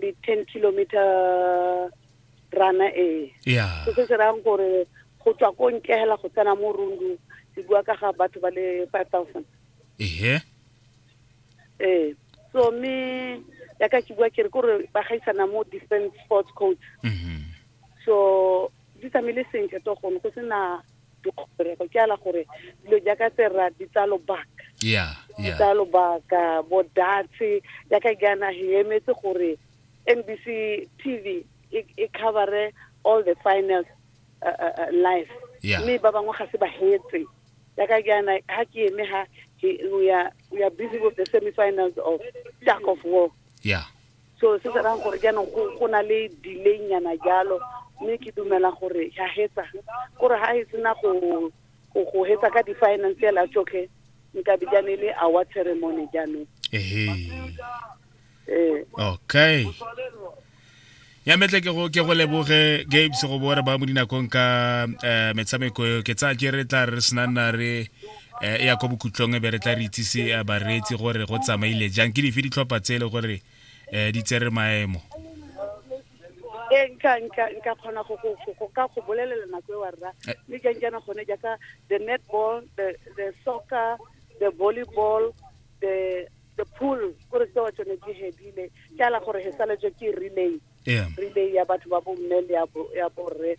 le ten kilometer rana e yeah. se se rayang gore go tswa ko nkegela go tsena mo rundu se bua ka ga batho ba le five thousand ehe ee so mme ya ka ke bua kere kore ba gaisana mo different sports coach mm -hmm. so di tsamaile sentle to gone go sena dikgorego ke ala gore dilo jaaka tse rra di tsa lobaka yeah, yeah. tsa lobaka bodatse jaaka jaana he emetse gore nbc tv e, e covere all the finals uh, uh, uh, live yeah. mme ba bangwe ga se ba hetse jaaka jaana ha ke eme ha we are, we are busy with the semi-finals of Jack of War yeah so se se rang gore jaanong go go na le delay nyana jalo mme ke dumela gore ya hetsa kore ga e sena go go hetsa ka di-financial a tsotlhe nka be jane le our ceremony jaanong ee okay ya metle ke go ke go leboge games go bore ba mo dinakong ka um metshameko ke tsaya ke re tla re senang na re eh, e ya kwa bokhutlong e be re tla re itsise eh, bareetsi gore go tsamaile jang ke dife ditlhopha tse e le gore um di tsere maemo e nka nka nka kgona go go go ka go bolelela nako e wa rra mme jang jana gone jaaka the netball the the soccer the volleyball the the pool gore tsewa tsone di hedile ke ala gore he saletswe ke relay relay ya batho ba bomme le ya borre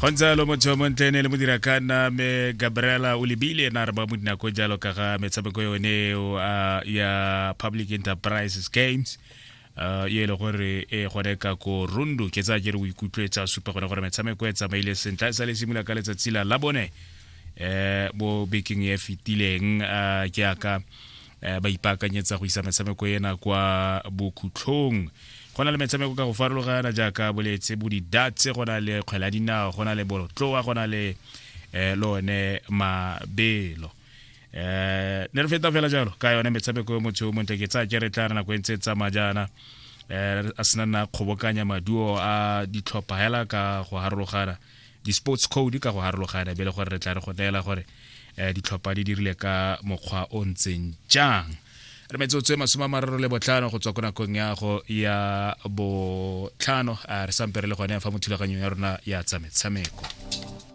go ntse jalo motho montle ne le modira ka nna me gabriela o lebile ena re ba mo dinako jalo ka ga metshameko yone uh, ya public enterprises games uh, ye e le gore e gone ka ko rundu ke tsa ke re o ikutlwetsa supa gone gore metshameko e tsamaile sentle e sa le simula ka letsatsi la labone um eh, bo bekeng e fetileng um ke aka eh, ba ipaakanyetsa go isa metshameko ena kwa bokhutlhong go na le metshameko ka go farologana jaaka boletse bo didatse go na le kgwela dinao go na le bolotloa go na le eh, lone mabelo eh ne re feta fela jalo ka yone metshameko motho o montle ke tsa ke re tla re nako e ntse e tsamaya jaana eh a sena nna kgobokanya maduo a ditlhopha hela ka go harologana di-sports code ka go harologana be le gore re tla re go neela gore um ditlhopha di dirile ka mokgwa o ntseng jang re metsotso e masome a mararo le botlhano go tswa ko nakong ya go ya botlhano re sampe re le gone fa mo thulaganyong ya rona ya tsametshameko